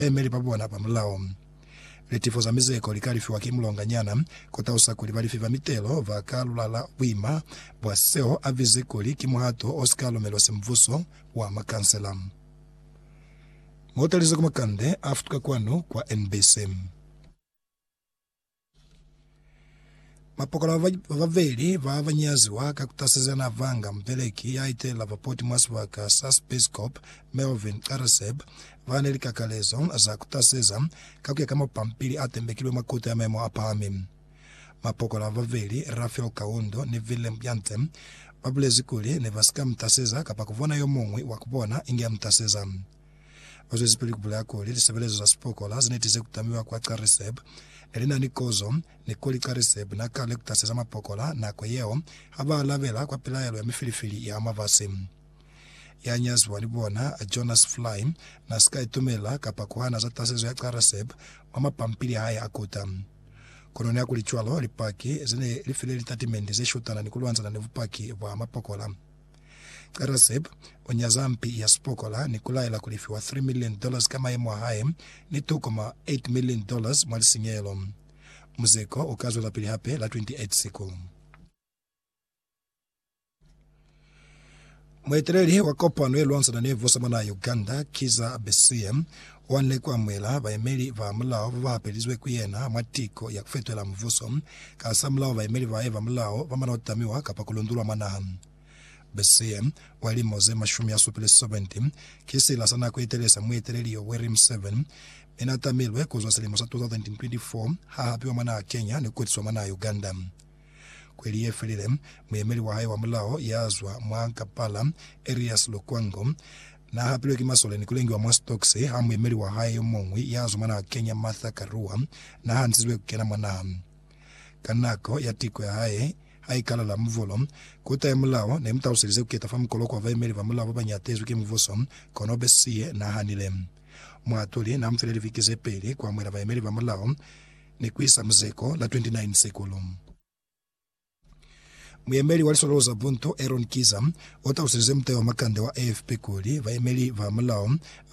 baemeli ba bona ba mulao. Litifo za mizeko li ka lifiwa ki mulonganyana. Ku talusa kuli balifi ba mitelo ba ka lulala buima bwa seo a bize kuli ki muhato o si ka lumelwa Simbuso wa Makansela. Mo talize ku makande a futuka kwanu kwa NBC. Mapokolo ba babeli ba ba nyaziwa ka ku tasezana ba nga mubeleki ya itelela bapoti mwa sibaka sa sipisikopo Melvin Careseb ba na ni likakalezo za ku taseza ka ku ya ka mapampili a tembekilwe mwa Kuto ya Maemo a Pahami. Mapokolo ba babeli, Raphael Kawondo ni Willem Janse, ba bulezi kuli ne ba si ka mu taseza kapa ku bona yo muñwi wa ku bona inge a mu taseza. Ba zwezipili ku bulela kuli lisebelezo za sipokola ze ne tize ku tamiwa kwa Cariseb ne li na ni kozo, ni kuli Cariseb n'a ka lekutaseza mapokola nako yeo ha ba alabela kwa pilaelo ya mifilifili ya mafasi. Ya nyaziwa ni bona, Jonas Fly, n'a si ka itumela kapa ku hana za tasezo ya Cariseb mwa mapampili a hae a kuta. Kono nihakulicwalo, Lipaki ze ne li file litatimendi ze shutana ni ku lwanzana ni bupaki bwa mapokola. Qeresep u nyaza mpi ya sipokola ni ku laela ku lifiwa three million dollars ka mayemo a hae ni two koma eight million dollars mwa lisinyehelo. Muzeko u ka zwelapili hape la 28 Siku. Mueteleli wa kopano ye lwanzana ni vusamana ya Uganda, Kizza Besigye, Wa nle ku amuhela bayemeli ba mulao ba ba hapelizwe ku yena mwa tiko ya ku fetohela mubuso. Kahasamulaho, bayemeli bae ba mulao ba mana ku tamiwa kapa ku lundulwa mwa naha. Bessie, wa lilimo ze mashumi a supile, 70, ki sila sa nako ye telele sa mueteleli Yoweri Museveni, mi na tamilwe ku zwa silimo sa 2024 ha hapiwa mwa naha Kenya ni ku kutiswa mwa naha Uganda. Kweli ye felile, muyemeli wa hae wa mulao ya zwa mwa Kampala, Erias Lukwango, n'a hapilwe ki masole ni ku lengiwa mwa sitoksi ha muyemeli wa hae yo muñwi ya zwa mwa naha Kenya, Martha Karua, n'a hantizwe ku kena mwa naha. Ka nako ya tiko ya hae, haikalala muvolo, Kota ya Mulao ne mu taluselize ku keta fa mukoloko wa bayemeli ba mulao ba ba ñatezwi ki mubuso, kono be siye n'a hanile. Muhatuli n'a mu file liviki ze peli ku amuhela bayemeli ba mulao. ni ku isa muzeko la 29 sekulu. Muyemeli wa liswalo za buntu Aaron Kiza u talusize muteo wa makande wa AFP kuli, Bayemeli ba mulao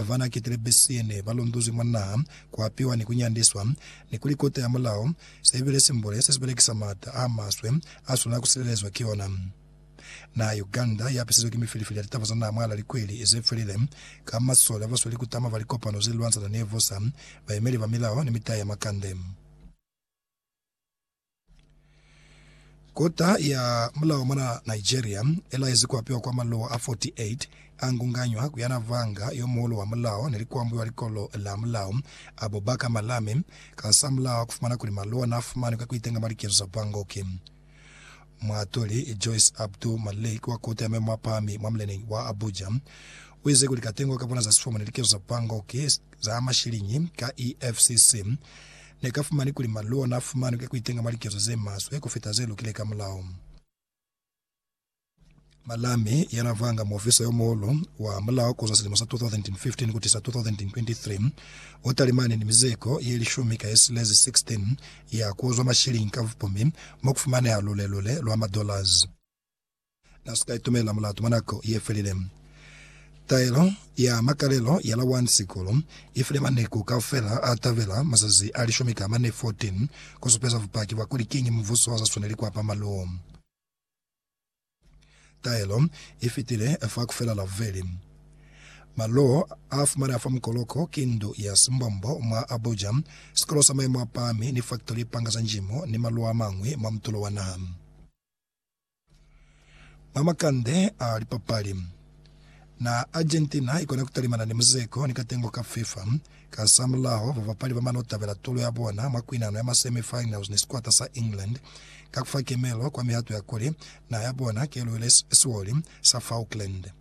ba n'a ketile Bessie ne ba lunduzwi mwa naha, ku apiwa ni ku nyandiswa, ni kuli Kote ya Mulao se bile simbole se si belekisa m'ata a maswe a swanela ku silelezwa ki ona. Naha ya Uganda yapisizwe ki mifilifili ya litaba za naha mwalaa likweli zefilile, ka masole abasweli kutama fa likopano zelilwanzana ni Evosa, bayemeli ba milao, ni mitayi ya makande. Kota ya mulao mwana Nigeria ilaezi kuapiwa kwa maluwa a 48 angunganywa ku yana vanga yomuhulu wa mulao neli kuambuiwa likolo la mulao, Abubakar Malami, kasamulaho kufumana kuli maluwa naafumanwi ka kuitenga mwa likezo za bangoki. Muatuli Joyce Abdul Malik wa Koti ya Memo a Pahami mwa muleneñi wa Abuja uize kuli katengo ka bona za sifomo ni likezo za bangoki za mashiliñi ka EFCC ne ka fumani kuli maluo na fumanwi ka kuitenga mwa likezo ze maswe kufita ze lukile ka mulao. Malami, yana vanga muofisa yo muhulu wa mulao kuzwa silimo sa 2015 kutisa 2023, o talimani ni mizeko ye lishumi ka yesilezi 16 ya kuuzwa mashilingi ka vupumi mo kufumaneha lule-lule lwa ma dollars. Na si ka itumela mulatu mwa nako ye felile. Taelo ya makalelo ya la 1 Sikulu ifile maneku kaufela a tabela mazazi a lishumi ka mane, 14, kusupeza bupaki bwa kuli kiñi mubuso wa sa swaneli kuapa maluo. Taelo i fitile fa ku fela laveli. Malo a fumaneha fa mukoloko ki ndu ya simbombo mwa a buja, sikolo sa maimo a pahami, lifaktori, lipanga za njimo, ni malo a mañwi mwa mutulo wa naha. Mwa makande a lipapali. Na Argentina haikona kutalimana ni Muzeko ni katengo ka Fifa. Kasamulaho, babapali bamano tabela tulo yabona mwa kuinano ya ma semi finals ni sikwata sa England ka kufa kemelo kwa mihato ya kuli naha yabona keluile siwoli sa Falkland.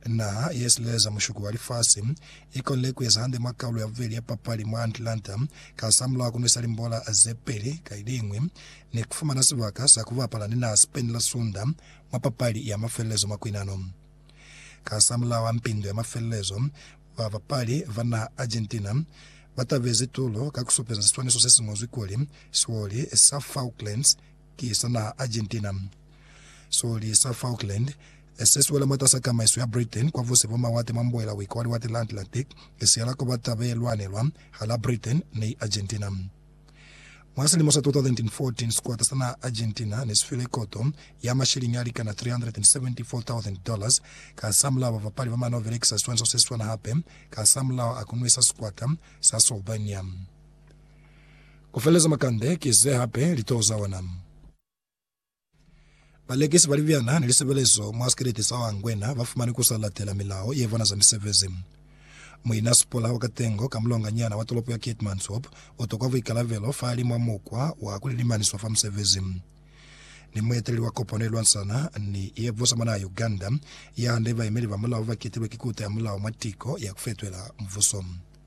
Naha yesileleza mushuku wa lifasi ikonile kueza hande mwa kaulo yabubeli ya papali mwa Atlanta kasamulaho kunwisa limbola zepeli kaliñwi ni kufumana sibaka sa kubapala ni naha Spain la Sunda mwa papali ya mafelelezo mwa kuinano. Kasamulaho a mpindo ya mafelelezo, babapali ba naha Argentina ba tabezi tulo ka ku supeza siswaniso se si ñozwi kuli, Sioli sa Falklands ki sa naha Argentina. Sioli sa Falkland, se si wela mwatas'a tamaiso ya Britain kwa busi bwa mawate mwa mbuela-uika wa Liwate la Atlantic, si yela ku ba taba ye lwanelwa hal'a Britain ni Argentina. Mwa silimo sa 2014, sikwata sa naha Argentina ne si file koto ya mashiliñi a likana $374,000 kahasamulaho ba bapali ba mane ho belekisa siswaniso se siswana hape kahasamulaho a ku nwesa sikwata sa Slovenia ku feleleza makande ki ze hape litoho za ona. Balekisi ba libyana ni lisebelezo mwa sikeleti sa Wangwena ba fumani ku sa latela milao ye bona za misebezi. Muina Sipora wa Katengo ka mulonganyana wa tolopo ya Keetmanshoop u tokwa buikalabelo fa li mwa mukwa wa ku lilimaniswa fa musebezi. Ni mueteleli wa kopano ye lwansana ni ye busa mwa naha ya Uganda, ya nde baemeli ba mulao ba kitilwe ki kuta ya mulao mwa tiko ya ku fetwela mubuso.